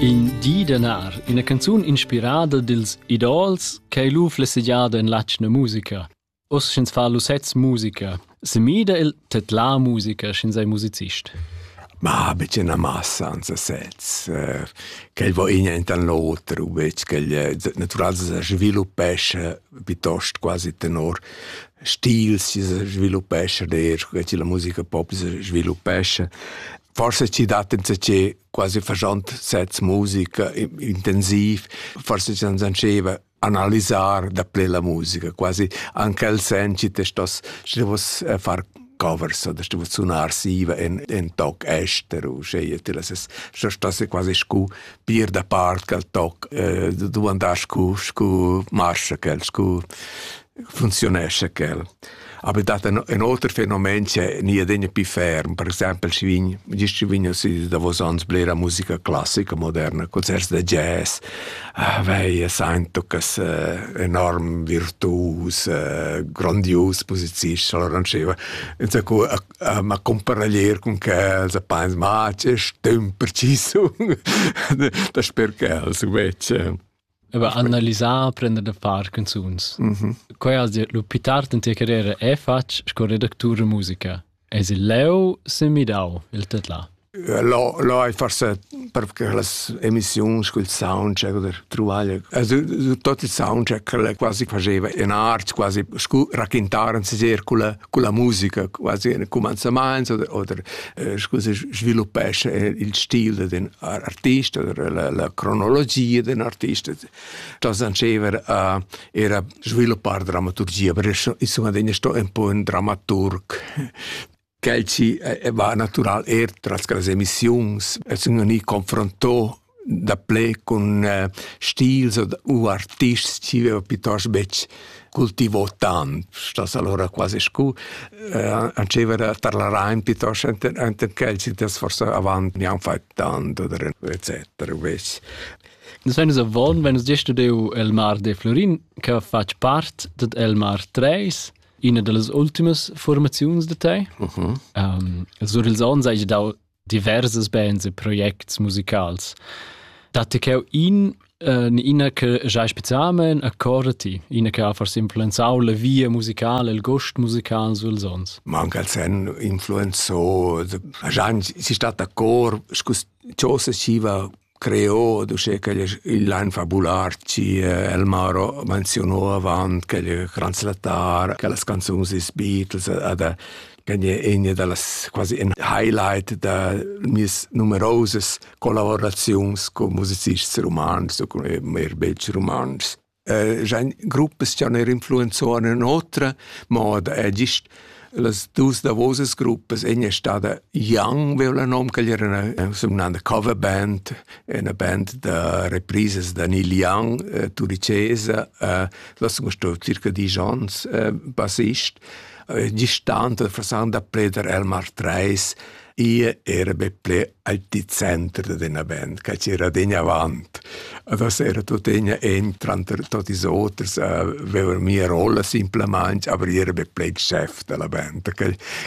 In di d'anar, ina canzun inspirada dils idols ch'ei lu flessegiada en l'atgna musica. Oz sch'ins fa lu sez musica, semida el tedlar musica sch'ins ei musicist. Ma bitte una massa an se sez, eh, ch'el vo in ent an l'oter, u bec ch'el eh, natural se sviluppesce piuttosto quasi tenor stil si se sviluppesce, der che la musica pop se sviluppesce. Forse ci dat insatge quasi facent sets musica intensiv, forse ci non sanceva analisar da ple la musica, quasi anche il sen ci te stos ci vos eh, far covers oder du sunar siva en en toc ester u scegliet ti ses so stosse quasi scu pir da part cal toc du andar scu scu marsch cal scu funzionescha quel. Aber dat ein, ein oter fenomen che ni adegna pi ferm, per exempel schi vin, gist schi vin si da vos ans blera musica classica moderna, concerts da jazz, ah, vei, Saintucas eh, enorm virtuus, eh, grandius posizist, allora non sceva. Insomma, a, a comparaglier con quels, a pens, ma che stüm preciso, da sper quels invece. Aber analisar, prender da far canzuns. Mm -hmm. Quai has dit, lu più tard in tia carriera è fatg sco redactur e musica. Es il leu se midau il tetla? L'ho l'ho ai forse perché las emissioni col soundcheck oder trovare also tutto il soundcheck le quasi faceva in art quasi scu raccontaren si con la musica quasi in commencaments oder oder scu se sviluppesce il stil d'un artista, la, la cronologia d'un artista, da sanceva a era sviluppar dramaturgia, perché insomma degna sto un po' un dramaturg quel ci eh, va natural er tras las emissiuns, e sun ni confronto daplè cun eh, stils u artists chi veva piuttosto betg cultivò tant, stas allora quasi scu, eh, ancevera tarlarain piuttosto enten che il cites forse avant mi han fait tanto oder etc. Ves. Nus venis avon, venis gest deu el mar de Florin, che fatg part ded el mar 3, ina dallas ultimas formaziuns de te. Uh -huh. um, sur ils onns hai dau diverses bands e projects musicals. Datti cheu in Uh, ina che giai specialmain accorda ti, ina che ha forse influenzau la via musicale, il gost musical sul sons. Ma anche il sen influenzò, già si sta d'accord, scusa, ciò se siva Creo d'uschè ch'el es ün lain fabular chi El Maro menzionou avant ch'el es translattar, che las canzuns dils Beatles ad ch'en egna da las quasi in highlight da mieas numerosas collaboraziuns cun musicists rumantschs u cun eir bels rumantschs. Ein gruppas che han er influenzau un'otra moda è gist las dus davosas gruppas. Ina è stata Young, veo la nom, che era una, una cover band, una band da reprises da Neil Young, eh, turicesa, eh, das sono stato circa dieci anni eh, bassist. Eh, gestante fra sang da Preder Elmar Treis, e era be ple al di center d'ena band, che c'era degna avant. Adesso era tuttegna en tranter tot is oters aveva mia rolla simplamente, aber io era be play chef della band.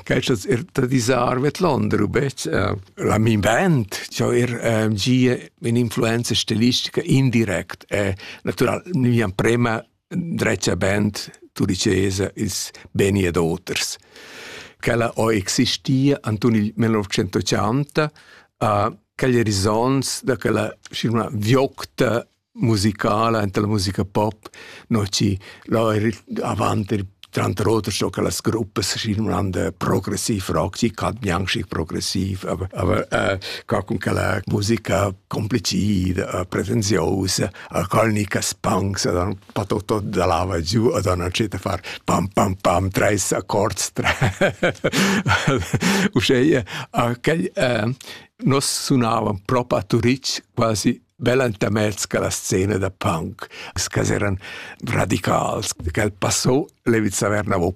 Questo er da disarvet Londra,bec la min band, ciò er um, gie in influenza stilistica indirect e natural, mi prema dretga band tudicesa ils beni ed oters. Quella ho existia anton il 1980 a quegli risonts da quella scena viocta musicala enta la musica pop no ci là avant il tranter oters so che las gruppe si un progressiv rock ci cat bianchi progressiv aber aber äh, ca con quella musica complicida uh, pretenziosa a colnica spangs a dan pa tot tot da lava giu a dan a ceta far pam pam pam treis accords tre uschè a quel eh, nos sunavan propa a Turitg quasi bella intermezz che la scena da punk che eran radicals che passò Leviz Averna